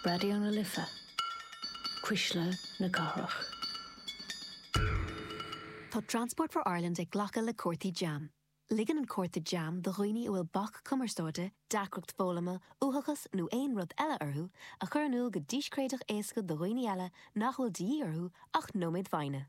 Raidió na Life, Cuisle na Cathrach. Tá Transport for Ireland ag glacadh le cártaí JAM. Ligeann an cárta JAM do dhaoine a bhfuil bac cumarsáide, deacracht foghlama, uathachas nó aon rud eile orthu a chur in iúl go díscréideach éasca do dhaoine eile nach bhfuil de dhíth orthu ach nóiméad foighne.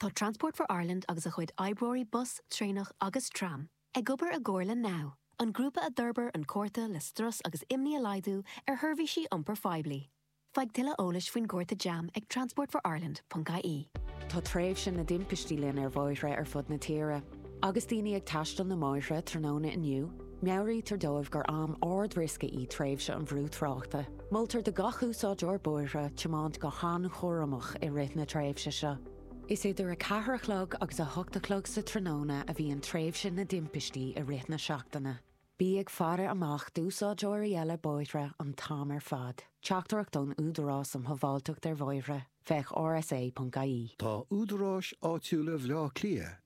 Tá Transport for Ireland agus a chuid oibreoirí bus, traenach agus tram ag obair i gcomhar le NOW, an grúpa a d'fhorbair an cárta le strus agus imní a laghdú ar sheirbhísí iompair phoiblí. Faigh tuilleadh eolais faoin gcárta JAM ag transportforireland.ie. Tá tréimhse na dtimpistí linn ar bhóithre ar fud na tíre. Agus daoine ag taisteal na mbóithre tráthnóna inniu, Meabhraítear dóibh gur am ardriosca í tréimhse an bhrú tráchta. Moltar do gach úsáideoir bóithre tiomáint go han-chúramach i rith na tréimhse seo. Is idir a ceathair a chlog agus a hocht a chlog sa tráthnóna a bhíonn tréimhse na dtimpistí i rith na seachtaine. Bí ag faire amach d'úsáideoirí eile bóithre an t-am ar fad. Teachtaireacht ón Údarás um Shábháilteacht ar Bhóithre, féach rsa.ie. Tá údaráis áitiúla Bhaile Átha Cliath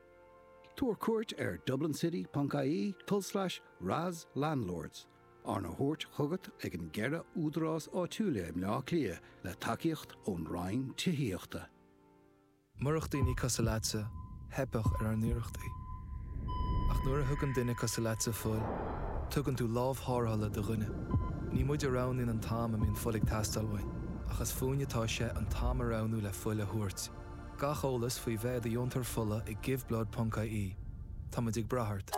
Tabhair cuairt ar dublincity.ie cúlslais RAS Landlords, arna thabhairt chugat ag an gceithre údarás áitiúla i mBleá Cliath le tacaíocht ón Roinn Tithíochta. Murach daoine cosúil leatsa, theipfeadh ar ár n-iarrachtaí. Ach nuair a thugann duine cosúil leatsa fuil, tugann tú lámh tharrthála do dhuine. Ní muid a roghnaíonn an t-am a mbíonn fuil ag teastáil uainn, ach is fúinn atá sé an t-am a roghnú le fuil a thabhairt. Gach eolas faoi bheith i do dheontóir fola ag giveblood.ie. Táimid ag brath ort.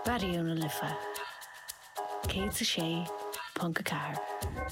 Raidió na Life 106.4.